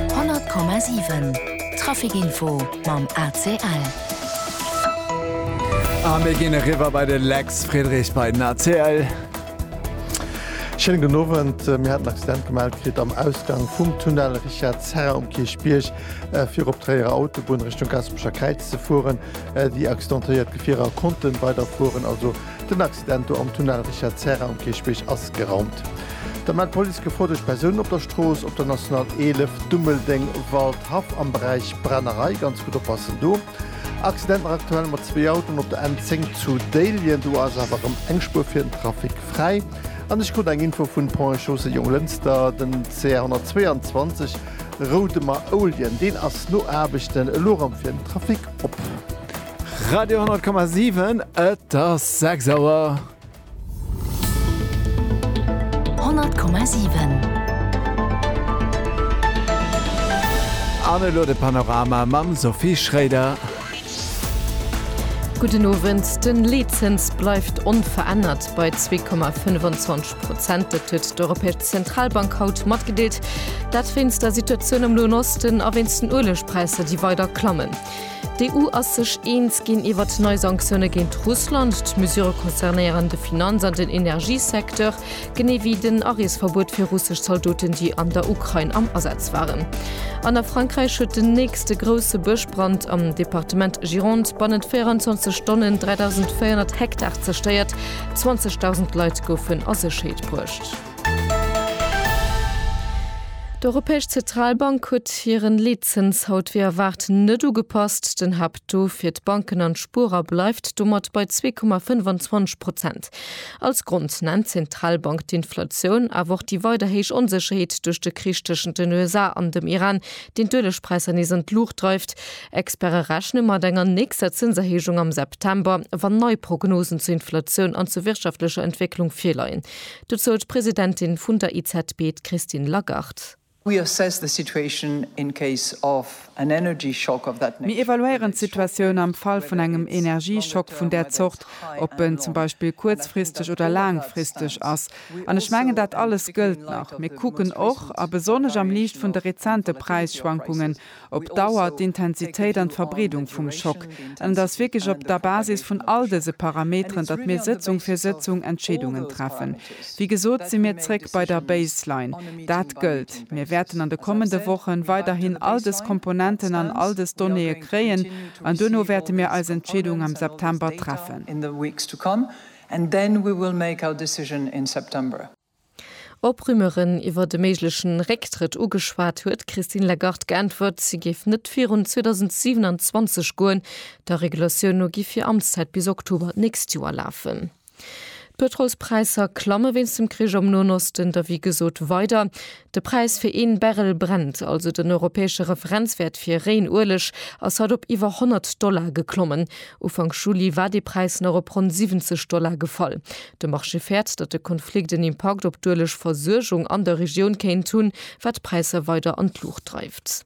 100,7 Trafic Info mam ACL. A mir ginn eriwwer bei de Lex Friedrich bei den ACL. Schéinen gudden Owend. Mir haten en Accident gemellt kritt am Ausgang vum Tunnel Richard Serra um Kierchbierg, fir op d'Tréierer Autobunn Richtung Gaspeschakräiz ze fueren. Déi accidentéiert Gefierer konnten weiderfueren, also Den Accident do am Tunnel Richard Serra um Kierchbierg ass geraumt. Da mellt d'Police gefouerdecht Persounen op der Strooss, op der National 11, Dummeldeng, Waldhaff, am Beräich Brennerei. Ganz gutt oppassen do. Accident nach aktuell mat zwee Autoen op der N10 zu Déiljen. Do ass awer erëm eng Spuer fir den Trafic fräi. An ech krut eng Info vun Pont et Chaussée Jonglënster, den CR 122 Roudemer-Ouljen, deen ass no Aarbechten elo erëm fir den Trafic op. Radio 10,7 et ass 6 Auer. 100,7 An elo de Panorama mam Sophie Schréider. Gudden Owend. Den Leetzëns bleift onverännert bei 2,25 Prozent. Dat huet d'Europäesch Zentralbank haut matgedeelt. Dat wéinst der Situatioun am Noen Osten a wéinst den Uelegpräisser, déi weider klammen. D'EU ass sech eens ginn iwwer nei Sanktioune géint Russland. D'Mesurë concernéieren de Finanz an den Energiesecteur, genee wéi den Areesverbuet fir russesch Zaldoten, déi an der Ukrain am Asaz waren. An a Frankräich huet den nächste grousse Bëschbrand am Departement Gironde bannent 24 Stonnen 3.400 Hektar zerstéiert, 20.000 Leit goufen a Sécherheet bruecht. D'Europäesch Zetralbank huet hiren Leetzëns haut wéi erwaart net ugepasst. Den Haapttaux fir d'Banken an d'Spuerer bleift domat bei zwee Komma 25 Prozent. Als Grond nennt d'Zentralbank d'Inflatioun, awer och déi weider héich Onsécherheet duerch de Krich tëschent den USA an dem Iran, deen d'Uelegpräisser nees an d'Luucht dreift. Experte rechne mat enger nächster Zënserhéijung am September, wann nei Prognosen zur Inflatioun an zur wirtschaftlecher Entwécklung virleien. Dozou d'Presidentin vun der EZB, d'Christine Lagarde. Mir evaluéieren d'Situatioun am Fall vun engem Energieschock vun där Zort, ob en zum Beispill kuerzfristeg oder laangfristeg ass. An ech mengen, dat alles gëllt nach. Mir kucken och, a besonnesch am Liicht vun de rezente Präisschwankungen, op Dauer, d'Intensitéit an d'Verbreedung vum Schock. An et ass wierklech op der Basis vun all dëse Parameteren, datt mir Sëtzung fir Sëtzung Entscheedungen treffen. Wéi gesot si mir zréck bei der Baseline. Dat gëllt. Mir wäerten an de kommende Wochen weiderhin all dës Komponenten an all dës Donnéeë kréien an duerno wäerte mir eis Entscheedung am September treffen. Op Rumeuren iwwer e méigleche Récktrëtt ugeschwat, huet d'Christine Lagarde geäntwert, si géif net virun 2027 goen. Der Regulatioun no giff hir Amtszäit bis Oktober d'nächst Joer lafen. D'Pëtrolspräisser klamme wéinst dem Krich am Noen Osten, der wéi gesot weider. De Präis fir een Barrel Brent, also den europäesche Referenzwäert fir réien Ueleg, ass haut op iwwer 100 Dollar geklommen. Ufank Juli war dee Präis nach op ronn 70 Dollar gefall. De Marché fäert, datt de Konflikt en Impakt op d'Uelegversuergung an der Regioun kéint hunn, wat d'Präisser weider an d'Luucht dreift.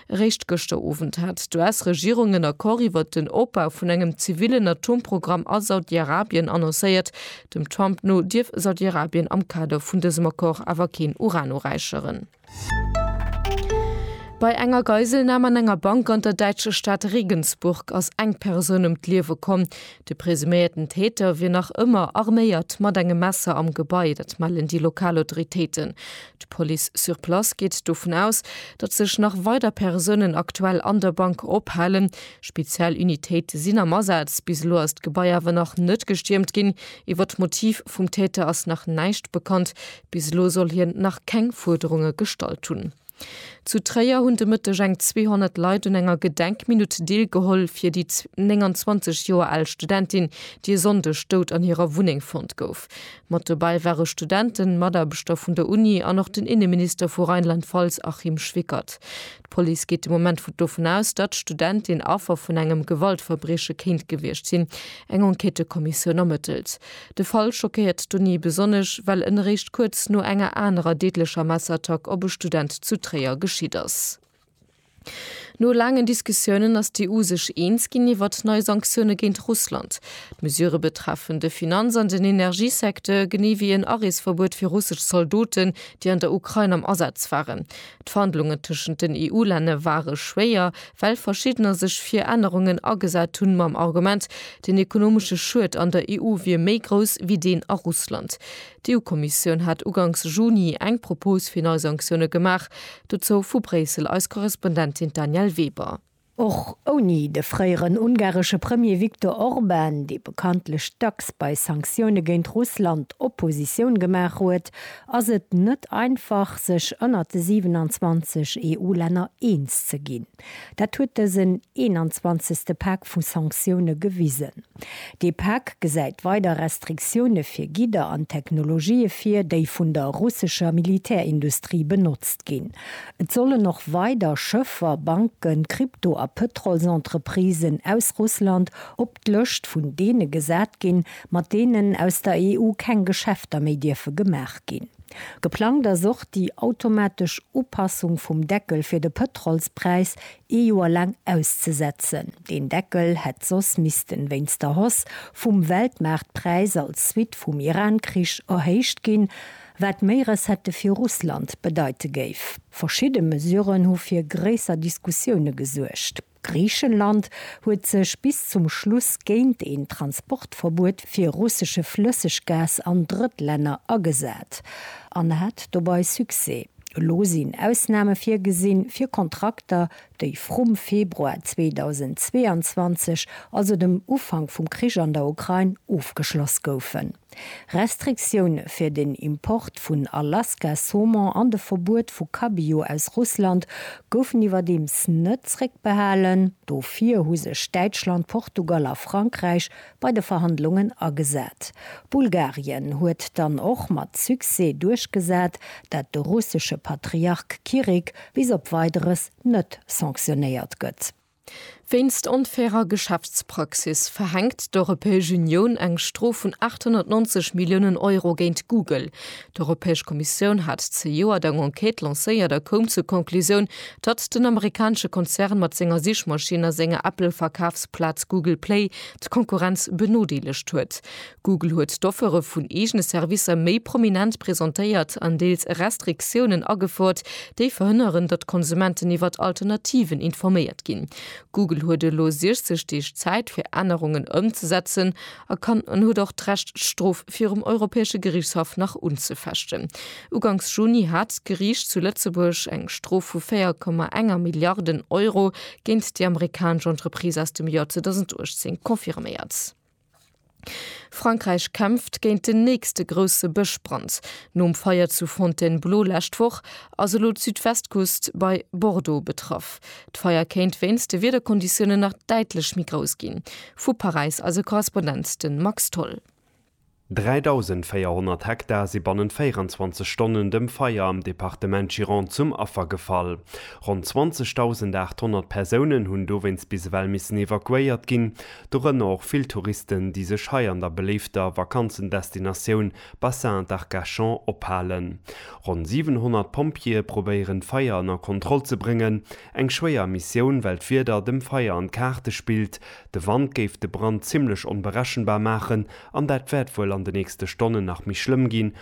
Eréischt gëschter Owend hat d'US-Regierung en Accord iwwer den Opbau vun engem zivillen Atomprogramm a Saudi-Arabien annoncéiert. Dem Trump no dierf Saudi-Arabien am Kader vun dësem Accord awer keen Uran uräicheren. Bei enger Geiselnam an enger Bank an der däitscher Stad Regensburg ass eng Persoun ëm d'Liewe komm. De presuméierten Täter wier nach ëmmer arméiert mat engem Messer am Gebai, dat mellen déi lokal Autoritéiten. D'Police sur place geet dovun aus, datt sech nach weider Persounen aktuell an der Bank ophalen. Speziell Unitéite sinn am Asaz. Bis elo ass d'Gebai awer nach net gestiermt ginn. Iwwer d'Motiv vum Täter ass nach näischt bekannt. Bis elo soll hien nach keng Fuerderunge gestallt hunn. Zu Tréier hunn de Mëtteg eng 200 Leit un enger Gedenkminutt deelgeholl fir déi 29 Joer al Studentin, déi e Sonndeg dout an hirer Wunneng fonnt gouf. Mat dobäi ware Studenten, Mataarbechter vun der Uni an och den Inneminister vu Rheinland-Pfalz Achim Schwickert. D'Police geet de Moment dovun aus, datt d'Studentin Affer vun engem Gewaltverbrieche kéint gewiescht sinn. Eng Enquêtëkommissioun ermëttelt. De Fall schockéiert d'Uni besonnesch, well en eréischt kuerz no enger anerer deedlecher Messerattack op e Student zu Tréier geschitt ass. No laangen Diskussiounen ass d'EU sech eens ginn iwwert nei Sanktioune géint Russland. D'Mesurë betreffen de Finanz an den Energiesecteur, genee wéi en Areesverbuet fir russesch Zaldoten, déi an der Ukrain am Asaz waren. D'Verhandlungen tëschent den EU-Länne ware schwéier, well verschiddener sech fir Ännerungen agesat hunn, mam Argument, den ekonomesche Schued an der EU wier méi grouss wéi deen a Russland. D'EU-Kommissioun hat uganks Juni eng Propos fir nei Sanktioune gemaach. Dozou vu Bréissel eis Korrespondentin d'Danièle Weber. Och ouni de fréieren ungaresche Premier Viktor Orban, dee bekanntlech dacks bei Sanktioune géint Russland Oppositioun gemaach huet, ass et net einfach, sech ënnert de 27 EU-Länner eens ze ginn. Dat huet dësen 21. Pak vu Sanktioune gewisen. Dee Pak gesäit weider Restriktioune fir Gidder an Technologië vir, déi vun der russescher Militärindustrie benotzt ginn. Et sollen och weider Schëffer, Banken, Krypto a Pëtrolsentreprisen aus Russland op d'Lëscht vun deene gesat ginn, mat deenen aus der EU keng Geschäfter méi dierfe gemaach ginn. Geplangt ass och déi automatesch Upassung vum Deckel fir de Pëtrolspräis ee Joer laang auszesetzen. Deen Deckel hätt soss missten, wéinst der Hausse vum Weltmaartpräis als Suite vum Iran-Krich, erhéicht ginn, wat méi Recettë fir Russland bedeite géif. Verschidde Mesuren hu fir gréisser Diskussioune gesuergt. Griichenland huet sech bis zum Schluss géint een Transportverbuet fir russesche Flësseggas an Drëttlänner agesat an hat dobei Succès. Elo sinn Ausname virgesinn fir Kontrakter, déi vrum Februar 2022, also dem Ufank vum Krich an der Ukrain, ofgeschloss goufen. Restriktioune fir den Import vun Alaska-Saumon an de Verbuet vu Cabillaud aus Russland goufen iwwerdeems net zréckbehalen. Dofir hu sech Däitschland, Portugal a Frankräich bei de Verhandlungen agesat. Bulgarien huet dann och mat Succès duerchgesat, dat de russesche Patriark Kirik bis op Weideres net sanktionéiert gëtt. Wéinst onfairer Geschäftspraxis verhänkt d'Europäesch Unioun eng Strof vun 890 Milliounen Euro géint Google. D'Europäesch Kommissioun hat zejoert eng Enquête lancéiert a koum zur Conclusioun, datt den amerikanesche Konzern mat senger Sichmaschinn a senger Apple-Verkafsplaz Google Play d'Konkurrenz benodeelegt huet. Google huet d'Offere vun eegene Servicer méi prominent presentéiert an deels Restriktiounen agefouert, déi verhënneren, datt d'Konsumenten iwwert Alternativen informéiert ginn. Google huet elo 60 Deeg Zäit, fir Ännerungen ëmzesetzen a kann an huet och d'Recht, d'Strof virum Europäesche Geriichtshaff nach unzefechten. Uganks Juni hat d'Geriicht zu Lëtzebuerg eng Strof vu 4,1 Milliarden Euro géint déi amerikanesch Entreprise aus dem Joer 2018 confirméiert. Frankräich kämpft géint den nächste grousse Bëschbrand. Nom Feier zu Fontainebleau lescht Woch ass elo d'Südwestküst bei Bordeaux betraff. D'Feier kéint wéinst de Wiederkonditiounen nach däitlech méi grouss ginn. Vu Paräis eise Korrespondent de Max Tholl. 3.400 Hektar si bannent 24 Stonnen dem Feier am Departement Gironde zum Affer gefall. Ronn 20.800 Persounen hunn dowéinst bis ewell missen evakuéiert ginn. Dorënner och vill Touristen, déi sech hei an der beléifter Vakanzendestinatioun Bassin d'Arcachon ophalen. Ronn 700 Pompjeeë probéieren d'Feier ënner Kontroll ze bréngen. Eng schwéier Missioun, well d'Wieder dem Feier an d'Kaarte spillt. De Wand géif de Brand zimmlech onberechenbar maachen an dat wäert wuel an de nächste Stonnen nach méi schlëmm ginn,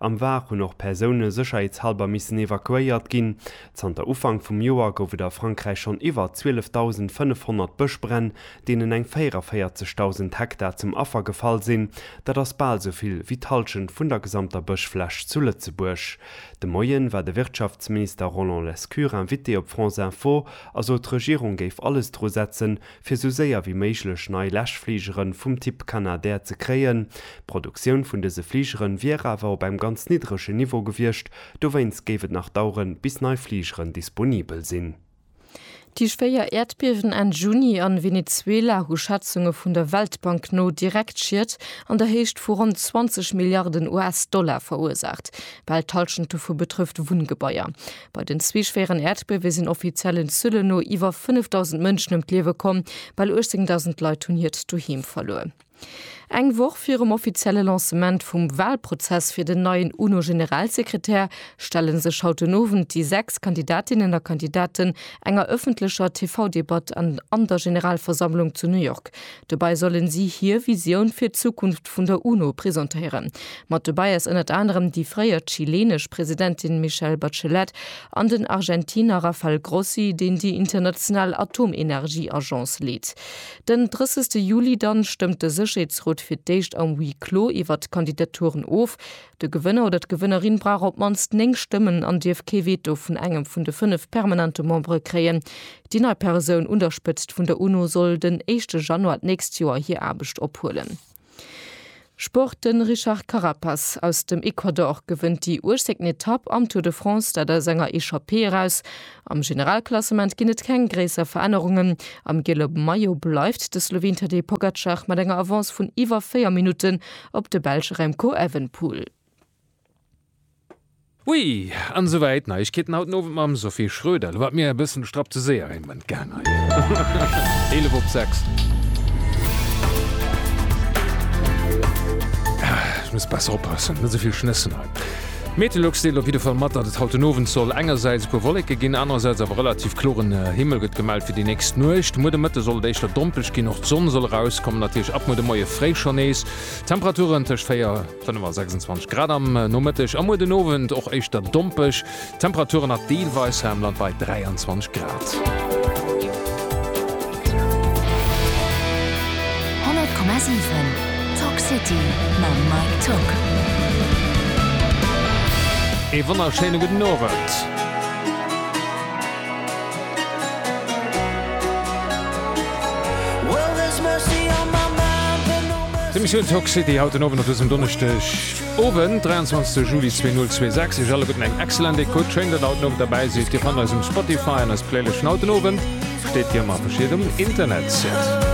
Am Var hunn och Persoune sécherheetshalber missen evakuéiert ginn. Zanter Ufank vum Joer gouf et a Frankräich schonn iwwer 12.500 Bëschbränn, deenen eng 44.000 Hektar zum Affer gefall sinn. Dat ass bal esou vill wéi d'Hallschent vun der gesamter Bëschfläch zu Lëtzebuerg. De Moien war de Wirtschaftsminister Roland Lescure Invité op France Info a sot d'Regierung géif alles dru setzen, fir sou séier wéi méiglech nei Läschfligere vum Typ Canadair ze kréien. D'Produktioun vun dëse Fligere wier awer op engem ganz niddregen Niveau gewiescht, dowéinst géif et nach daueren, bis nei Fligeren disponibel sinn. Déi schwéier Äerdbiewen Enn Juni a Venezuela hu Schätzunge vun der Weltbank no direkt Schied an der Héicht vu ronn 20 Milliarden US-Dollar verursaacht. Bal d'Hallschent dovu betrëfft Wunngebaier. Bei den zwee schwéieren Äerdbiewe sinn offiziellen Zuelen no iwwer 5.000 Mënschen ëm d'Liewe komm, bal 18.000 Leit hunn hiert Doheem verluer. Eng Woch virum offizielle Lancement vum Walprozess fir den neien UNO-Generalsekretär stelle sech haut den Owend déi sechs Kandidatinnen a Kandidaten enger ëffentlecher TV-Debatt an der Generalversammlung zu New York. Dobäi sollen si hir Visioun fir d'Zukunft vun der UNO presentéieren. Mat dobäi ass ënnert anerem déi fréier chileenesch Presidentin Michelle Bachelet an den Argentiner Rafael Grossi, deen déi international Atomenergieagence leet. Den 30 Juli dann stëmmt de Sécherheetsrot fir d'éischt am Huis clos iwwert d'Kandidaturen of. De Gewënner oder d'Gewënnerin brauch op d'mannst 9 Stëmmen an dierf kee Veto vun engem vun de 5 permanente Membere kréien. Déi nei Persoun un der Spëtzt vun der UNO soll den éischte Januar d'nächst Joer hir Aarbecht ophuelen. Sport, De Richard Carapaz aus dem Ecuador gewënnt déi uechzéngten Etapp am Tour de France, dat aus enger Echappée eraus. Am Generalklassement ginn et keng gréisser Verännerungen. Am giele Maillot bleift de Sloween Tadej Pogacar mat enger Avance vun iwwer 4 Minutten op de Belsch Remco Evenepoel. Oui! An souwäit Neiegkeeten haut den Owend mam Sophie Schroeder. Lo war et mir e bëssen strapp ze séier een Moment gaang hei. 11 op 6. Ech muss besser oppassen, net esouvill schnëssen hei. Meteolux deelt op jidde Fall mat, datt et haut den Owend soll engersäits e puer Wolleke ginn, anerersäits awer relativ kloren Himmel gëtt gemellt fir déi nächst Nuecht. Muer de Mëtte soll et éischter dompeg ginn, och d'Sonn soll erauskommen, natierlech ab muer de Moie fréi schonn nees Temperaturen tëscht 4. D'Wënn war 26 Grad am Nomëtteg a muer den Owend och éischter dompeg. D'Temperaturen nach deelweis hei am Land bei 23 Grad. Ee wonnerschéine gudden Owend. D'Emissioun Talk City haut den Owend op dësem Donneschdeg Owend, 23 Juli 2026. Iech alleguerten eng excellent Ecoute. Schéin, datt Der haut Owend derbäi sidd. Dir fannt eis um Spotify an eis Playlëschten. Haut den Owend steet wéi ëmmer verschiedenes um Internetsite.